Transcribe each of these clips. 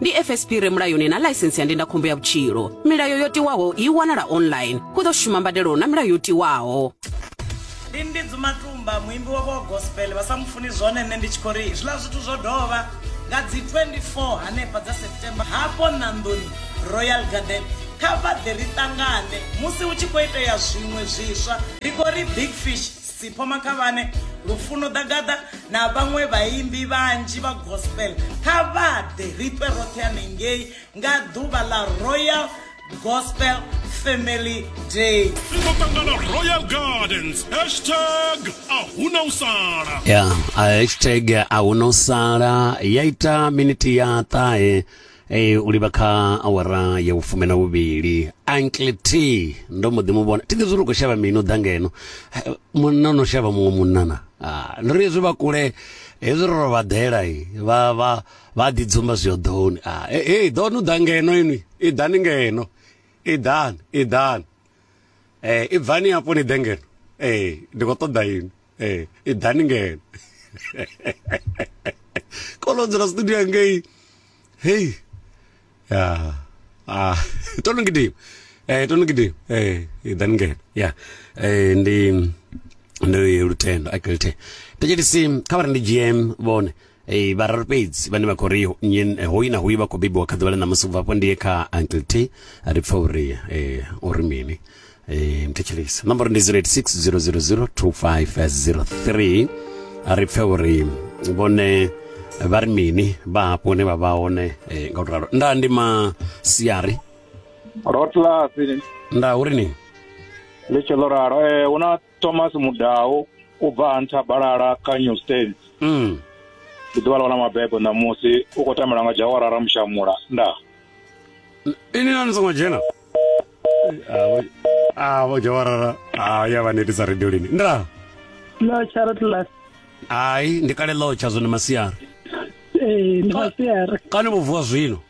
ndi fsp re mulayoni na ḽaisensi ya ndindakhombo ya vhutshilo milayo yo tiwaho i wanala online hu ḓo shuma mbadelo na milayo yo tiwaho ndi ndi dzumatumba muimbi wavho wa gospel vha sa mu funi zwone nṋe ndi tshi khou ri zwiḽa zwithu zwo dovha nga dzi 24 hanefha dza september hafho ṋanḓoni royal garden kha vha ḓe ri ṱangane musi hu tshi khou itea zwiṅwe zwiswa ri khou ri big fish Sipho Makhavhane, Lufuno Ḓagaḓa na vhaṅwe vhaimbi vhanzhi vha gospel kha vha ḓe ri ṱwe roṱhe hanengei nga ḓuvha ḽa Royal Gospel Family Day. Ri ḓo ṱangana Royal Gardens hashtag a huna u sala. Ya, yeah, hashtag a huna u sala ya ita miniti ya ṱahe Ee, u livha kha awara ya vhufumi na vhuvhili uncle t ndo mbo ḓi mu vhona thi ḓivhi uri u khou shavha mini u ḓa ngeno Eh, munna no shavha muṅwe munna na Ah, ndo ri hezwi vha kule hezwi ro ro vha ḓela i, vha vha vha ḓi dzumba zwi hoḓoni Ah, eh, eh, ḓoni u ḓa ngeno inwi i ḓani ngeno i ḓani i ḓani Eh, i bvani hafho ni ḓe ngeno Eh, ndi khou ṱoḓa inwi ee i ḓani ngeno kolonzela studio yangei hei ya ah to no gidima eh to no gidima eh i ḓani ngeno ya eh ndi ndi lutendo akilithe thetshelisi kha vha ri ndi gm vhone Ee, vhararu fhedzi vhane vha khou ri nyi- eh, hoyu na hoyu vha khou bebiwa kha ḓuvha ḽa ṋamusi ubva hafho ndi ye kha uncle t ri pfa uri eh, o ri mini Eh, mthetshelisa nomboro ndi 0860002503 ri pfe uri vhone vha ri mini vha hafho hune vha vha hone eh, nga u to ralo nda ndi masiari rotlasi nda uri ni ḽi tshi ḽo ralo um hu na thomas mudau u bva ha nthabalala kha new states mm. ndi ḓuvha ḽa wana mabebo ṋamusi u khou tambela nga jawara ramushamula nda ini na ni songo dzhena avo jawarara a ya vha netisa radio lini nda lotsha ro tlas hai ndi kale lotsha zwone masiari ee ndi masiari kani vho vuwa zwino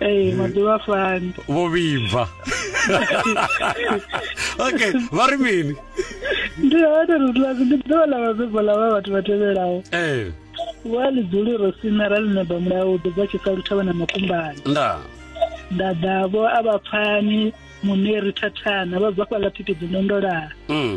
ee maḓuvha fani vho vhibva okay vha ri mini ndi hone ri ḽa ndi ḓuvha ḽa vhabebi ḽa vha vhathu vha tevhelaho ee wa ḽi dzuli ro sina ra ḽi neba mulayo u ḓo bva tshi sa luthavha na makumbani nda nda ḓavho a vha pfani muneri thathana vha bva fhaḽa thikhedzo ndondolaa mm.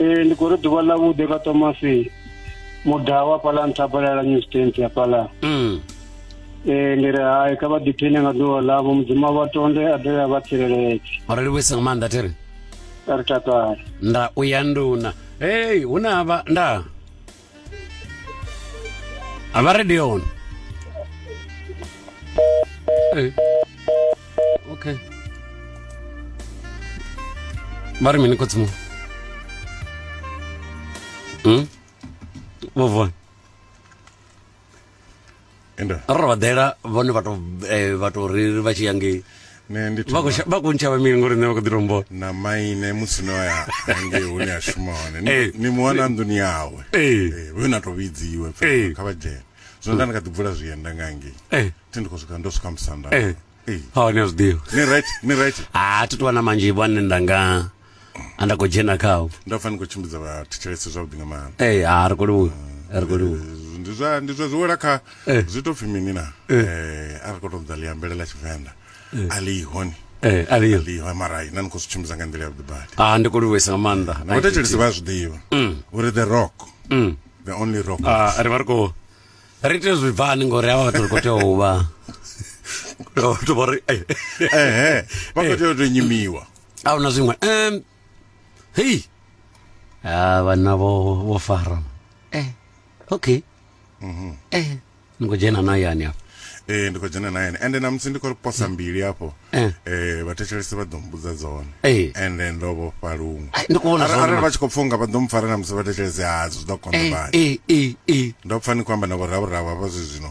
ee ndi khou ri ḓuvha ḽa vhuḓe kha tomasi mudaha wa fhaḽa nṱha phalala new stant ya fhaḽa mm. ee ndi ri hai kha vha ḓiphine nga ḓuvha ḽavho mudzimu vha tonde a dovhe a vha tsireletse ro livhuisa nga maanḓa thiri ri takale nda u ya nduna hei hu na vha ndaa A vha radio on. Eh. Okay. Vha ri mini khotsimu? Hmm? Vovon. ende ra vha ḓela vhone vha to eh, vha to ri vha tshi ya ngei ne ndi vha khou thoma sha- vha khou ntshavha mini ngori nṋe vha khou ḓi tombona na maine musi no ya hange hune a shuma hone Ni- Eh. ni muwana nḓuni yawe Eh. Eh, vhe na to vhidziwe pfa, Eh. kha vha dzhene zwino nda ndi kha ḓi bvula zwienda nga ngei Eh. thi ndi khou swika ndo swika musanda Eh. Eh. ha ni a zwiḓivha ni right ni right ha thi tovha na manzhi vhane nda nga a nda khou dzhena khawo nda pfa ni khou tshimbidza vhathetshelesi zwavhuḓi nga maanḓa ee eh, ha ri khou livhuwa a ri khou livhuwa Eh, ndi zwa ndi zwa ziwela kha Eh. zwi to pfi mini na Eh, a ri khou tou ḓa liambele ḽa tshivenḓa a liho ni ee Eh, a liyo liho mara na ni khou zwi tshimbidza nga nḓila yavhuḓi badi a ndi khou livhuwesa nga maanḓa na vhathetshelesi vha a zwi ḓivha uri the rock the only rock Ah, ri vha ri khou ri tea zwi bvani ngori havha vhathu ri khou tea u vha ri khou tea u vha ri ehe vha khou tea u tou nyimiwa a huna zwiṅwe um hei a ah, vhanna vho vho fara eh okay mhm. eh ni khou dzhena na yani afho eh ndi khou dzhena na yani ende namusi ndi khou posa eh. mbili afho eh, eh vhathetshelesi vha ḓo mbudza dzone eh. ende ndo vhofha luṅwe arali vha tshi khou pfunga vha ḓo mpfara namusi vhathetshelesi ha zwi ḓo konḓa bani ndo pfa ni khou amba na vhorhavhorhavho hafha zwi zwino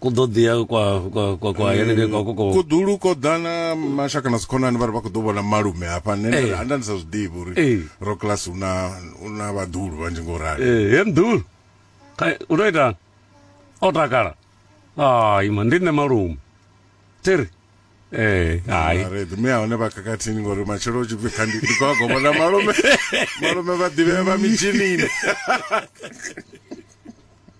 ku ḓo ḓiya kwa kwa kwa kwa henengei kwa koko kuḓulu ko ḓa na mashaka na dzikhonani vha ri vha khou ḓo vhona malume hafha nṋe nda ri, Eh. anda ndi sa zwi ḓivhi uri Eh. ro class hu na hu na vhaḓulu vhanzhi ngo rali eh he mdul kai u to ita o takala ai ma ndi nṋe malume tiri eh hai Mare, ḓume a hone vha khakhathini ngori matshelo u tshi pfi kha ndi ndi khou a goba na malume malume vha ḓivhea vha mitshinini